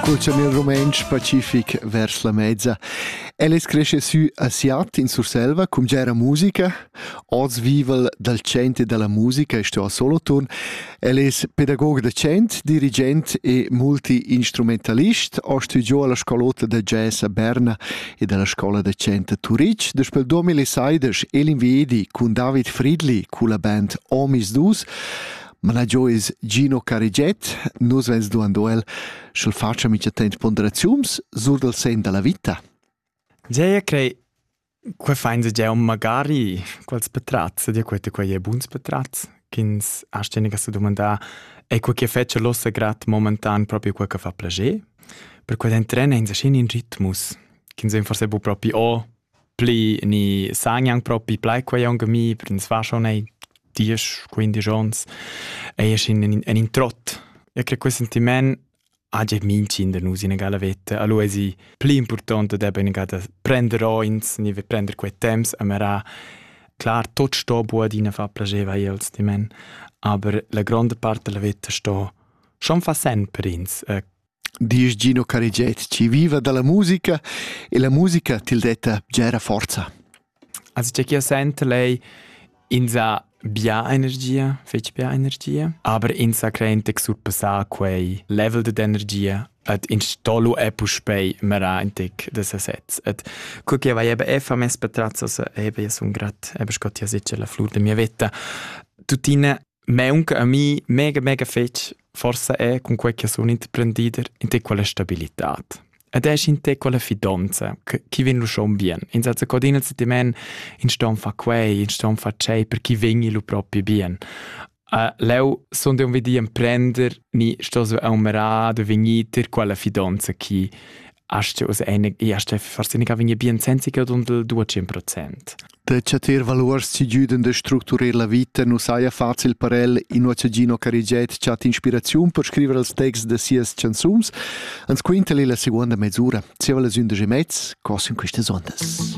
Cul chamel rumentsch pacific vers la mezza. El es cresce sü a Siat in Surselva cum gera musica. Oz vival dal center dalla musica e sto a Solothurn. El es pedagog docent, dirigent e multi-instrumentalist. Ho studiò alla scalota da jazz a Berna ed alla scola docente a Turitg. Daspel 2016 el invedi cun David Fridli culla band Omis Dus managiò es Gino Carigiet. Nus vens duando el, sch'el fatscha mincha temp ponderaziuns sur dal sen da la vita. Gea, crei, Qua fains gia un magari quals petrazs, ed quete qua è buns petrazs, ch'ins ha steniga se domandà, è quel che fece l'ossa grat momentan proprio quel che fa plager? Per quel entrena in sa scin in ritmus, ch'ins en forse bu proprio o pli ni sa gnanc propi plai quei aunc a mi, per ins va schon ei diesch, quindisch ons, ei es in, in, in trott. E che quel sentiment hagi mincin da nus in gala veta. Allora è sì pli importante da ben da prender ins, ni prender quei temps a mera. Klar, tot sto buat ina fa piaceva als di men, aber la grande parte della vita sto schon fa sen per ins. Eh, Disch Gino Carigiet chi viva da la musica e la musica til detta bgera forza. As già chi sent lei insa bia energia, fetg bia energia, aber insa crente che surpassà quei level de energia et in stollo è puspei mera in tec de sesez et cur che vai eben effa mes patrazzos eben ja sun grat eben scott ja sicher la flur de mia vetta tuttina Meunca a mi mega mega fetg forsa è cun quei che sun interprendider in te quella stabilitad. Ed è in te quella fidanza chi vegn lu schon bien. In senza codina si ti men in ston fa quei, in ston fa cei per chi vegni lu propi bien. Uh, leu sun dei un vedi emprender ni sto so aumera de vegnir ter quella fidanza chi hast us eine hast forse nicht vegni bien senza che dund il 200%. Da chatter valuors chi güdan da structurer la vita nu saja facil per el, inua cha Gino Carigiet chat inspiraziun per scriver els texts da sias chanzuns, ans quinta el la seguonda mesura, zieva las ündesch e mez, cos in quistas ondas.